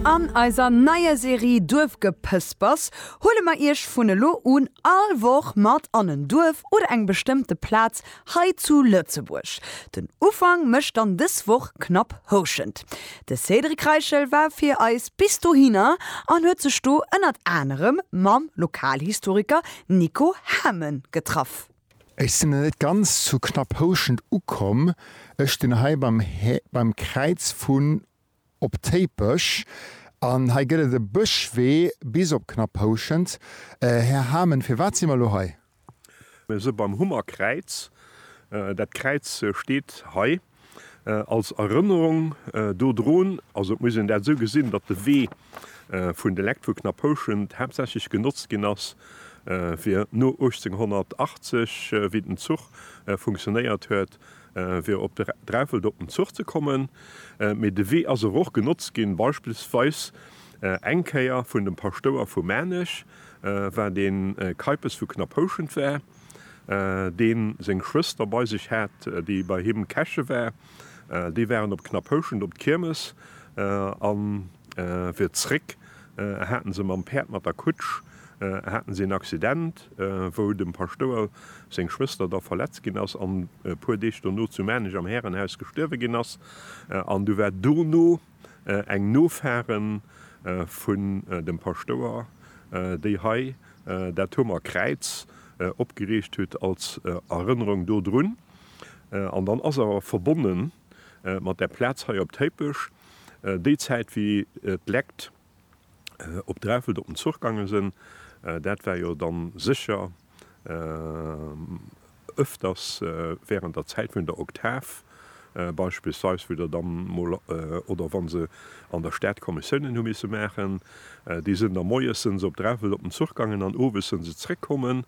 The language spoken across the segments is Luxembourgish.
An eiser neier Serie Duerfgepëspers huele mer Iech vun elo un all Woch mat an en Duerf oder eng bestëmmte Plaz hei zu Lëtzebuerg. Den Ufank mécht dann dës Woch Knapp Houschent. De Cédric Reichel war fir eis bis dohinner an huet sech do ënnert anerem mam Lokalhistoriker Nico Hamen getraff. Ech sin net ganz zu Knapphouschent ukomm, ech stin hei beim Kräiz vun Op Téipech an hei get et e Bëschwee bis op Knapphouschent. Här Hamen, firwat si mer lo hei? Mir si beim Hummerkräiz. Dat Kräiz steet hei. Als Erënnerung dodrun, also et muss een dat esou gesinn, datt de Wee vun de Lectures Knaphouschent haaptsächlech genotzt ginn ass fir no 1880, wéi den Zuch funktionéiert huet, fir op Dreffelt op den Zuch ze kommen, mee de Wee ass awer och genotzt ginn, beispillsweis eng Kéier vun dem Paschtouer vu Maarnech, wat ee Keipes vu Knaphouschent war. deen seng Schwëster bei sech hat, déi bei him Käche war. Déi waren op Knaphouschent op d'Kiermes a fir zréck haten se mam Päerd, mat der Kutsch, haten se een Accident, wou dem Paschtouer seng Schwëster da verletzt ginn ass an e puer Deeg dono zu Maarnech am Härenhaus gestuerwe ginn ass. An du war dono Eng Nofaren vun dem Paschtouer déi hei dat Huemer Kräiz opgeriicht hutt als Erënnerung do drun. An dann ass awer verbonnen mat där Plaz hei op Téipech déi Zäit wéi d'Lekt op Dreffelt op den Zuch gange sen. Dat war jo dann secher öfters während der Zeit vun der Oktav, beispillsweis wou der dann mol oder wann se an der Stad Kommissiounen hu misse machen. Déi sen da moies sen se op Dreffelt op den Zuch gangen an owes sen se zréckkommen.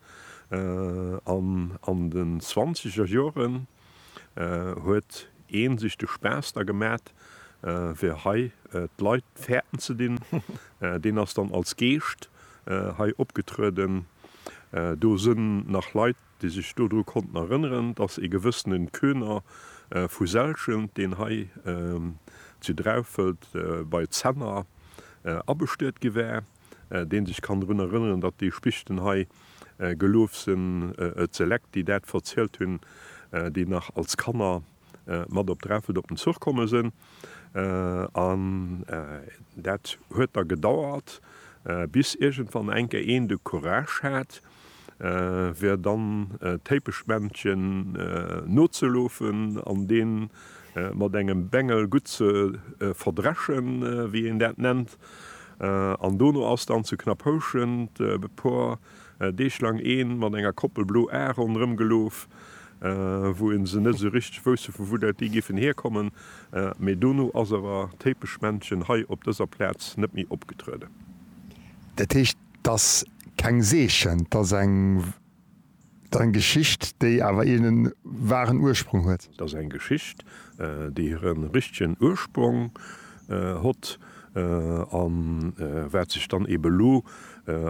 An an den zwanziger Joren. huet een sech de Spaass da gemat fir hei d'Leit fäerten ze dinn. Deen ass dann als Geescht hei opgetrueden. Do sinn nach Leit déi sech dodru konnten erënneren, datt ee gewëssene Köhner vu Selschent, deen hei zu Draufelt bei Zenner abestuet gi war, deen sech kann drun erënneren, datt déi Spichten hei gelouf sen, et se Leck, déi dat verzielt hun, déi nach als Kanner mat op Dreffelt op den Zuch komme sen. An dat huet da gedauert, bis iergendwann eng Kéier een de Courage hat, wär dann d'Téipeschmännchen nozelofen an dee mat engem Bengel gutt ze verdreschen, wéi een dat nennt. An dono ass dann zu Knapphouschent e puer Deeg laang ee mat enger Koppel blo Ae ronderëm gelof, wou ee se net esou richteg wousst, vu wou dat déi géifen hierkommen. Mee dono ass awer d'Téipeschmännchen hei op dëser Plaz net méi opgetrueden. Dat heescht, 't ass keng Seechen, 't ass eng Geschicht, déi awer een waren Ursprung huet. 't ass eng Geschicht, déi hire richtegen Ursprong hott a wat sech dann eben elo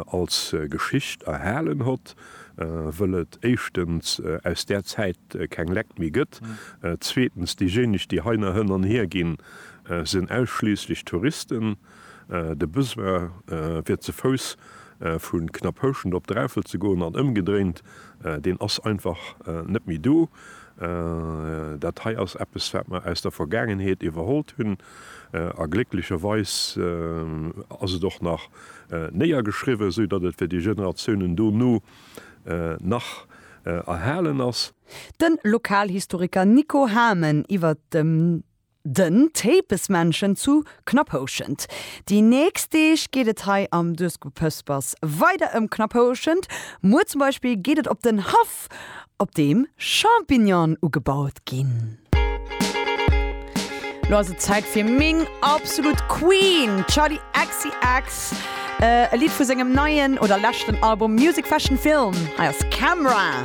als Geschicht erhalen hott, wëll et éischtens aus där Zäit keng Leck méi gëtt, zweetens déijéineg, déi hei nach hënn an hier ginn, sinn ausschliisslech Touristen. De Besoin fir ze Fouss vu Knapphouschent op Dräiffel ze goen an ëmgedréint, deen ass einfach net méi do. Dat hei ass eppes wat mer aus der Vergaangenheet iwwerhollt hunn a glécklecherweis ass et och nach néiergeschriwwen, esou datt et fir déi Generatiounen dono nach erhalen ass. Den Lokalhistoriker Nico Hamen iwwert dem. Den Tépesmännchen zu Knapphouschent. Déi nächst Deeg geet et hei am Duerskupëspers weider ëm Knapphouschent. Muer zum Beispill geet et op den Haff, op deem Champignonen ugebaut ginn. Lo ass et Zäit fir meng absolut Queen, Charli XCX. E Lidd vu sengem neien oder leschten Album Music Fashion Film. Hei ass Camera.